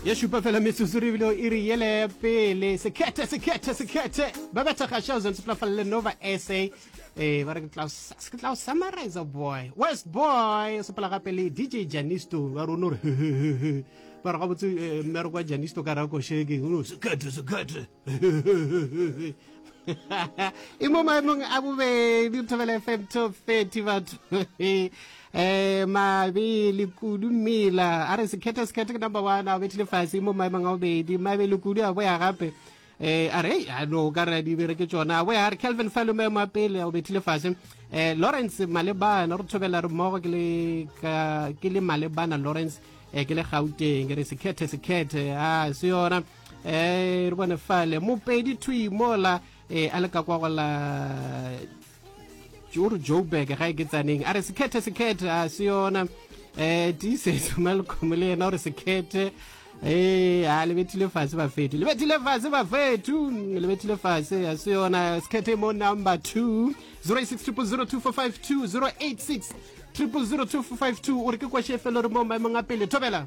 ya šupa fela metsotso re bile e re yele ya pele sekhethe sekhethe sekhethe ba betha gašao zantse pela falele nova sa um eh, ba re ke tla o summarize boy west boy sepela gape le dj janisto ba rone gore hehehehe ba re gabotse eh, mmereko wa janisto ka rakosheke sekhethe sekhethe e mo maemong a bobedi thobela fm top 30 batho eh mabele kudu mmila a re sekhethe sekhethe ke number one a bethile fase e mo maemong a bobedi mabele kudu a boya gape eh a re a no ka re di bere ke tsona a boya a re kelvin falo maemo a pele a bethile fase eh lawrence malebana re thobela re mmogo ke le ke le malebana lawrence eh ke le gauteng ke re sekhethe sekhethe a se yona eh re bone fale mopedi thui mola eh a le ka kwa gola o re joburg ga e ke tsaneng a re sekhethe sekhethe a se yona um tiisetso malcomo le yena o re sekhethe ee a lebethile fase bafetu lebethile fase bafetu lebethile fase a se yona sekhethe mo number two zero eight six triple zero two four five two zero eight six triple zero two four five two o re ke kwešefelo re mo maemong a pele thobela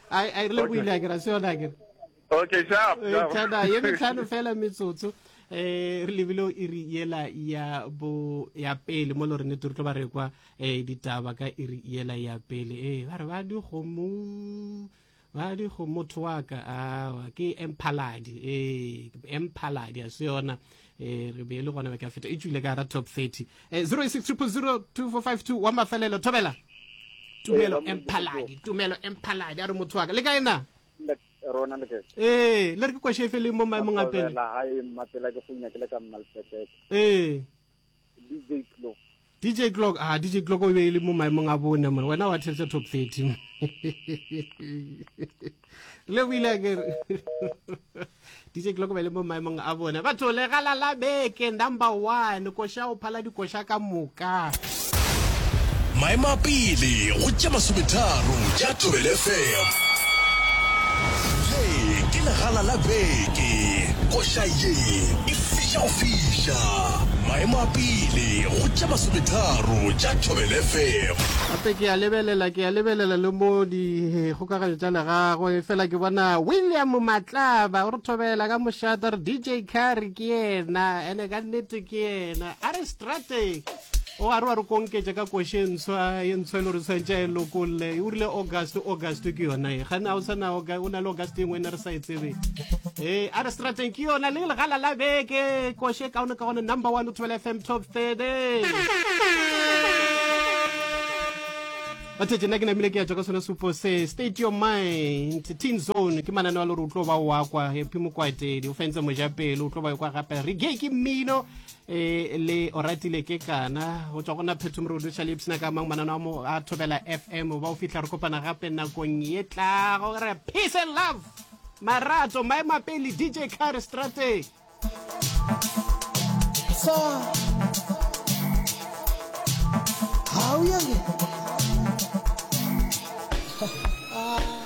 a rile go ile a kira se yona kere okay sharp tana ye metlhano fela metsotso eh re lebile o iri yela ya bo ya pele mo lorene tlo ba re kwa eh ditaba ka iri yela ya pele eh ba re ba di gomo ba di go motho wa ka awa ke emphaladi eh emphaladi a se yona e re be e le gona be ka feta e tswile ka gara top 30 e 06002452 wa mafelelo thobela tumelo emphaladi tumelo emphaladi a re motho wa ka le ka ena rona le ee le re ke kwashe e feleng mo maemong a pele ee DJ Clock. DJ Clock, ah, DJ Clock o be e le mo maemong a bone, man. Wena wa theletsa top 30. Le o ile ke re. DJ Clock o be e le mo maemong a bone. Batho le galala beke number 1, koša o phala dikoša ka moka. Maemo a pele go tša masometharo tša Thobel FM. Ye ke legala la beke. Koša ye e fiša go fiša. Maemo a pele go tša masometharo tša Thobela FM. Gape ke a lebelela, ke a lebelela le mo dikgokaganyo tša legago, efela ke bona William Matlaba. O re thobela ka mošate, re DJ Carry ke yena, ene ka nnete ke yena. A re strateg, o a re wa re konketša ka koše ntshwa, ye ntshwa e le gore tshwantša e lokolle. O rile August, August ke yona e. Gane a o sa na, o na le August e nngwe e ne re sa e tsebe ee a re strateng ke yona le legala la beke koše kaone ka gone number one o thobela fm top thirty bathetse nna ke namile ke ya tswa ka sone supo se state your mind teen zone ke manane wa lore o tlo ba oa kwa epi mokwatedi o fentse mojapele o tlo ba kwa gape re ge ke mmino e le oratile ke kana go tswa go na phetho morudu sa lipsna ka mang manana wa mo a thobela fm ba o fitlha re kopana gape nakong ye tlago re peace and love marato maemo a pele dj car strateg so how you